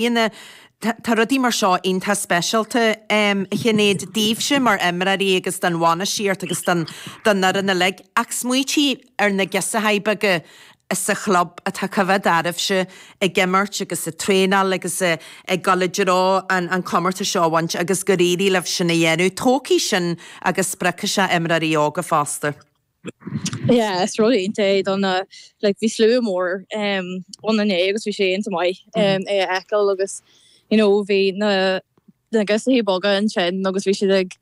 Ina, tá rudaí mar seo iontach speisialta, a Shinéad, daoibhse mar imreoirí agus don bhainistíocht agus don don fhoireann uilig. Ach smaoitigh ar na girseachaí beaga sa chlub atá ag coimhéad oraibhse ag imirt agus ag traenáil agus ag dul i dtreo an an comórtas seo a bhaint agus gur éirigh libh sin a dhéanamh. Tógfaidh sin agus spreagfaidh sé imreoirí óga fosta. Yeah, is rud iontach é do na, like, bhí slua mór ann inné agus bhí sé iontach maith é a fheiceáil agus, you know, bhí na na girseachaí beaga ansin agus bhí siad ag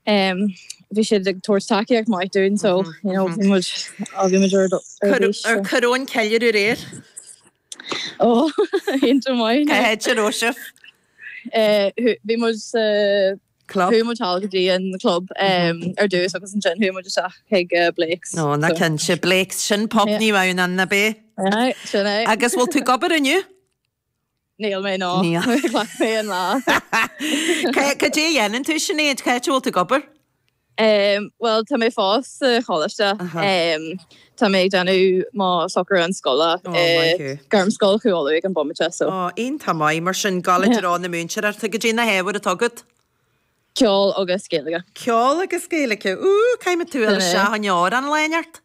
bhí siad ag tabhairt tacaíocht maith dúinn so, you know, bhí muid bhí muid ar bís. Ar cuireadh an ceiliúradh aréir? Oh, iontach maith. Cá háit a raibh sibh? Bhí muid sa. club. Chuaigh muid thall go dtí an club ar dtús agus ansin chuaigh muid isteach chuig Blake's. Ó, na cinnte, Blake's, sin pub Naomh Adhamhnáin, nach b'é. Aye, sin é. Agus bhfuil tú ag obair inniu? Níl mé, no. Níl. Ghlac mé an lá. Cad é a dhéanann tú, Sinéad? Cá háit a bhfuil tú ag obair? Bhuel, tá mé fós sa choláiste. Tá mé ag déanamh mo shocrúchán scoile i Gairmscoil Chú Uladh ag an bomaite so. Ó, iontach maith. Mar sin, ag dul i dtreo na múinteoireachta. Cad é na hábhair atá agat? Ceol agus Gaeilge. Ceol agus Gaeilge. Ooh! Caithfidh mé tú a fháil isteach chugainn le amhrán lá inteacht.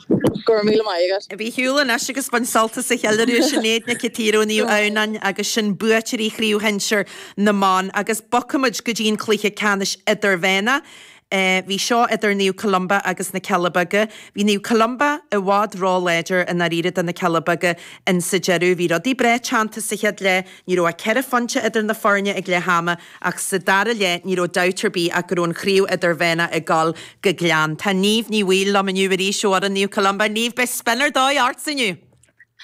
Go raibh míle maith agat. Bí ar shiúl anois agus bain sult as an cheiliúradh Sinéad Nic an tSaoir ó Naomh Adhamhnáin agus sin buaiteoirí chraobh shinsir na mban agus bogfaimid go dtí an cluiche ceannais idirmheánach. Bhí seo idir Naomh Columba agus na Cealla Beaga. Bhí Naomh Columba i bhfad ró láidir i ndáiríre do na Cealla Beaga insa deireadh. Bhí rudaí breá teannta sa chéad leath. Ní raibh ach ceithre phointe idir na foirne ag leath ama ach sa dara leath ní raibh dabht ar bith ach go raibh an chraobh idirmheánach ag dul go Gleann. Tá Niamh Ní Bhaoill liom inniu arís ó fhoireann Naomh Columba. Niamh, beidh spion ar dóigh ortsa inniu!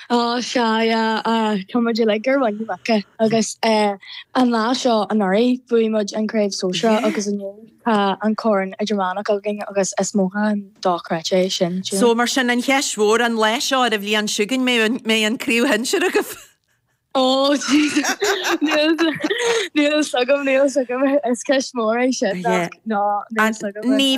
Ó, sea, tá muid uilig ar mhuin na muice agus an lá seo anuraidh bhuaigh muid an chraobh sóisear agus inniu tá an corn idirmheánach againn agus is mothúchán dochreidte é sin, cinnte. So, mar sin, an cheist mhór an lá seo, ar an bhliain seo chugainn an mbeidh an chraobh shinsear agaibh? Niamh,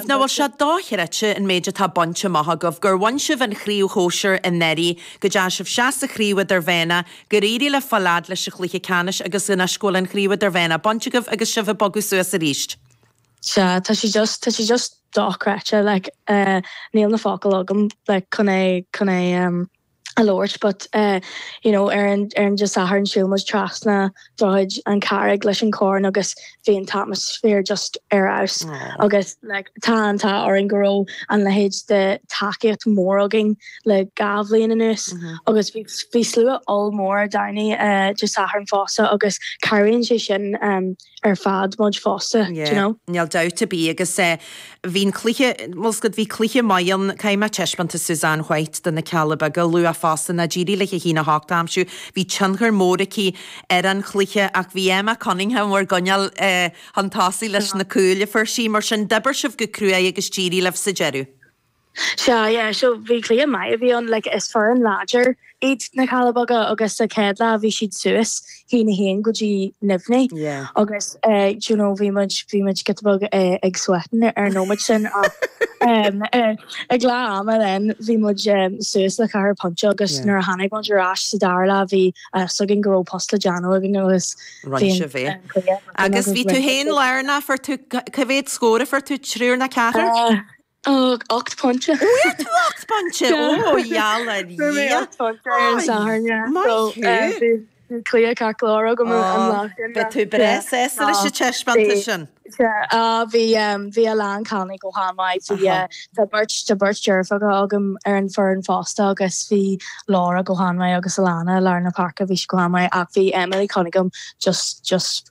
nach bhfuil sé dochreidte an méid atá bainte amach agaibh, gur bhain sibh an chraobh shóisir anuraidh, go dtearn sibh seasamh sa chraobh idirmheánach, gur éirigh libh fáil a fhad leis an chluiche ceannais agus anois go bhfuil an chraobh idirmheánach bainte agaibh agus sibh ag bogadh suas arís? Sea, tá sé just, tá sé just dochreidte, like, níl na focail agam, like, chun é, chun é, a labhairt but you know ar an ar an Dé Sathairn shiúil muid trasna droichead na Carraige leis an corn agus bhí an t-atmaisféar just ar fheabhas agus like tá an t-ádh orainn go raibh an leithéid de tacaíocht mhór againn le dhá bhliain anuas agus bhí bhí slua ollmhór ar ndóighe Dé Sathairn fosta agus cabhraíonn sé sin ar fad muid fosta, d'you know? Yeah, níl dabht ar bith agus eh, bhí'n cluiche, bhuel scoth, bhí cluiche maith ann, caithfidh mé taispeántas Suzanne White do na Cealla Beaga a lua fosta, nó d'éirigh léi a haon a hocht a aimsiú, bhí tionchar mór aici ar an chluiche ach bhí Emma Cunningham bhur gcoinneáil eh chun tosaigh leis na cúil a fuair sí, mar sin d'oibir sibh go cruaidh agus d'éirigh libh sa deireadh. Sea, yeah, so bhí cluiche maith a bhí ann, like is foireann láidir iad na Cealla Beaga agus sa chéad leath bhí siad suas, a haon a haon go dtí neamhní Yeah. agus eh do you know bhí muid, bhí muid giota beag eh ag sweatin' ar an nóiméad sin ach em eh ag leath ama then bhí muid em suas le ceathair phointe agus nuair a tháinig muid ar ais sa dara leath bhí a fhios againn go raibh post le déanamh againn agus bhí an cluiche thart Agus bhí tú fhéin lárnach, fuair tú, ca- cé mhéad scór a fuair tú, trí nó ceathair? Eh. Fuair mé ocht bpointe. Fuair tú ocht bpointe? Ó, geall ar Dhia! Fuair mé ocht bpointe ar an Satharn, yeah. Maith thú! So, bhí cluiche ceart go leor agam an lá sin, yeah. Beidh tú breá sásta leis an taispeántas sin. Sea, bhí, bhí achan duine go han-mhaith. Bhí, tá beirt, tá beirt deirfiúracha agam ar an bhfoireann fosta agus bhí Laura go han-mhaith agus Alana i lár na páirce, bhí sí go han-mhaith ach bhí Emily Cunningham just, just,